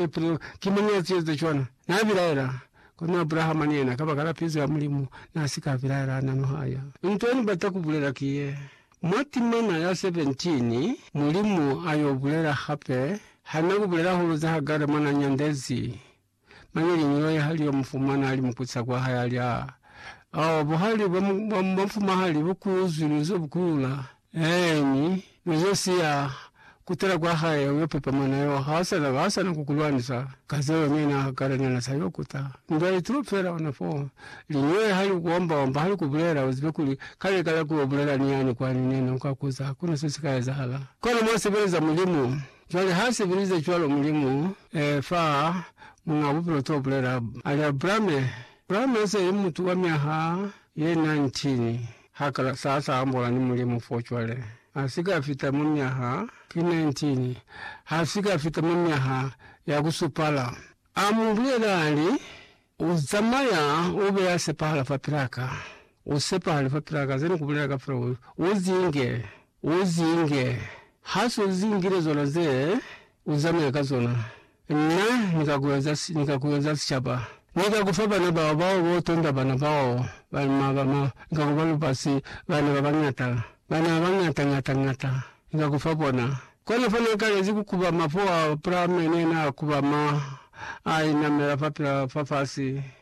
Epr. Ki mañi ya zieza cwana? Na bilaela, kono Abrahama ni yena, kabakala pizo ya Mulimu, na si ka bilaela ha na nuhaya. Nto ni bata ku bulela ki ye, Mwa timana ya 17, Mulimu a yo bulela hape, Ha na ku bulela hulu za Hagare mwa na nyandezi, mane liñolo ye ha li yo mu fumana a li mukuca kwa hae, a li, Aa! Oh, buhali bwa mufumahali bu ku zwile inzo bu kulula, Eeni, mi ze si ya kutela kwa hae uyo pepa mwana yo, ha sa na, ha sa na ku ku lwanisa ka zeo ne na kala ne na sa yo kuta. Ndwa itulo fela ona fo. Linywele ha li ku omba-omba, ha li ku bulela, u zibe kuli, kale kala ku yo bulela ni yani kwani ne na ka kuza, ha ku na se si ka ezahala. Kona mwa sebeleza Mulimu. Cwale ha sebelize cwalo Mulimu, ee, fa Muñaa Bupilo to bulela, a li, Abrame, Abrame se li mutu wa myaha ye 19. Ha ka sa sa ambola ni Mulimu fo cwale. Ha si ka fita mwa myaha ki 19, ha si ka fita mwa myaha ya ku supala. A mu bulela, a li, U zamaya u be ya sepahala fapil'a ka. U sepahale fapil'a ka, ze ni ku bulela kafela, u, u zinge. U zinge. Ha s'u zingile zona ze u zamaya ka zona, Na ni ka ku eza, ni ka ku eza sicaba. Ni ka ku fa bana bao, bao bo tonda bana bao, ba, ma, ba, ma, Ni ka ku ba lubasi, bana ba bañata, bana ba bañata, ñata, ñata, Ni ka ku fa bona. Kona fa Na kalezi ku kubama fo Abrahame ne na kubama, a inamela fapil'a fafasi.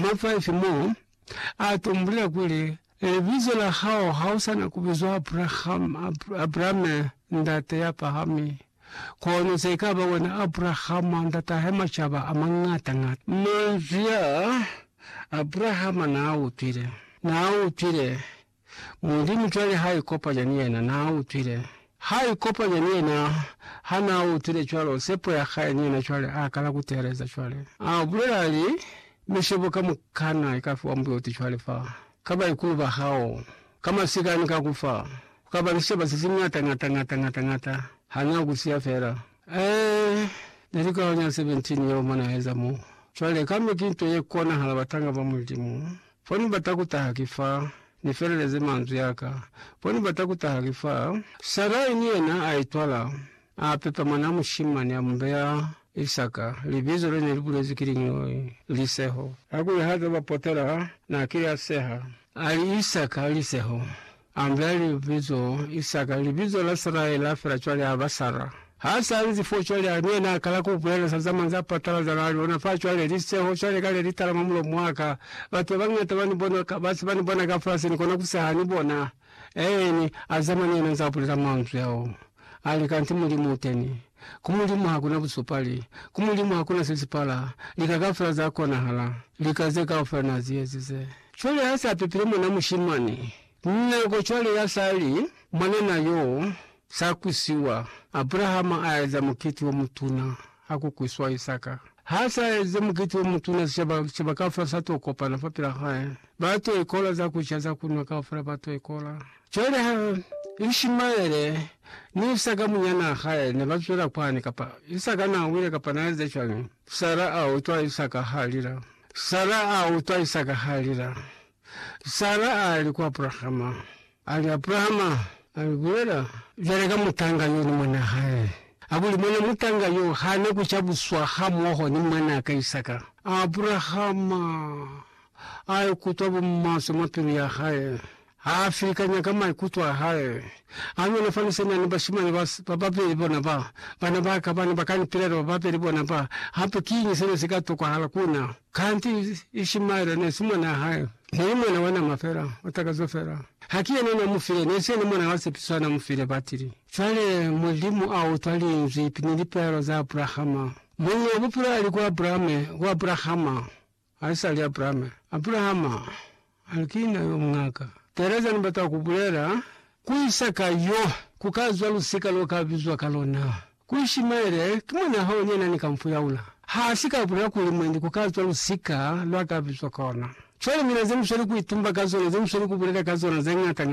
Ma 5 mo a tumbulela kuli, Libizo la hao ha u sa na ku bizwa Abrahama, Abrame, ndate ya pahami, kono se ka ba wena Abrahama, ndat'a he macaba a mangata-ngata. Manzwi a Abrahama n'a utwile, n'a utwile, Mulimu cwale ha ikopanya ni yena. Na utwile. Ha ikopanya ni yena. Ha na utwile cwalo, sepo ya hae ni yena cwale, a kala ku teeleza cwale. A bulela, a li, Mishebo kamukana ika fiwa muboti cwale fa, ka baikulu ba hao, ka masika ni ka kufa. Ku ka ba ni sicoba se si ñata, ñata, ñata, ñata, ñata, ha na ku siya fela. Ee, ne li kaho nya 17 yeo mo na eza mo. Cwale, kambe ki nto ye konahala, batanga ba Mulimu. Fo ni bata ku taha ki fa ni feleleze manzwi a ka. Fo ni bata ku taha ki fa. Sarai ni yena a itwala, a pepa mwanaa mushimani, a mu beya Isaka, libizo le ne li bulezwi ki liñoi, Liseho. Kakuli ha zaba potela, na kile a seha. A li, Isaka, Liseho. André libizo Isaka libizo la Saraye la fela cwale aba Sara. Ha sa lizi fo cwale ali yena a kala ku bulela sa zamani za patalaza na liona fa cwale li seho cwale kale li tala mwa mulomo wa ka. Batu ba bañata ba ni bona ka ba si ba ni bona ka fasi ni kona ku seha ni bona. Eeni, a zamani yena nza bulela manzwi ao. Ali, Kanti Mulimu uteni. Ku Mulimu hakuna busupali. Ku Mulimu hakuna sesipala. Lika kaufela za konahala. Lika ze kaufela Na zi ezize. Cwale ha se a pepile mwana mushimani, nako cwale ya sa li, mwanana yo, sa kwisiwa, Abrahama a eza mukiti o mutuna, ha ku kwiswa Isaka. Ha sa eze mukiti o mutuna, sicaba, sicaba kaufela sa to kopana fapil'a hae. Ba to ikola za ku ca, za ku nwa, kaufela ba to ikola. Cwale ha Ishimaele ni Isaka munyanaa hae ne ba zwela kwani, kapa Isaka naa wile kapa naa eze cwañi, Sara a utwa Isaka ha lila. Sara a utwa Isaka ha lila. Sara a li ku Abrahama, a li, Abrahama, a li, Bulela cwale ka mutanga yo ni mwanaa hae. Hakuli, mwana mutanga yo ha na ku cabuswa hamoho ni mwanaa ka Isaka. Abrahama a ikutwa bumaswe mwa pilu ya hae. Ha a filikanya ka maikuto a hae, a nyonafanisa na ni bashimane ba, ba babeli bona ba, bana ba ka, bana ba ka ni pilato ba babeli bona ba. Hape kiñi sena si ka tokwahala ku na? Kanti Ishimaele ne si mwanaa hae. Ne li mwana wa nama fela, wa takazo fela. Ha ki yena na mu file, ne si yena mwana wa sepiso a na mu file, batili. Cwale, Mulimu a utwa Linzwi ni lipilaelo za Abrahama. Muñi wa Bupilo a li ku Abrame, ku Abrahama. Haisali Abrahama, Abrahama a li, Ki na yo muñaka. Teeleza, Ni bata ku bulela, Ku Isaka yo, ku ka zwa lusika lo ka bizwa ka lona. Ku Ishimaele, ki mwana hao ni yena ni ka mu fuyaula. Ha si ka bulela kuli, Mwendi, ku ka zwa lusika lwa ka bizwa ka ona. Cwale mina ze mu sweli ku itumba ka zona, ze mu sweli ku bulela ka zona, ze ñata ñata.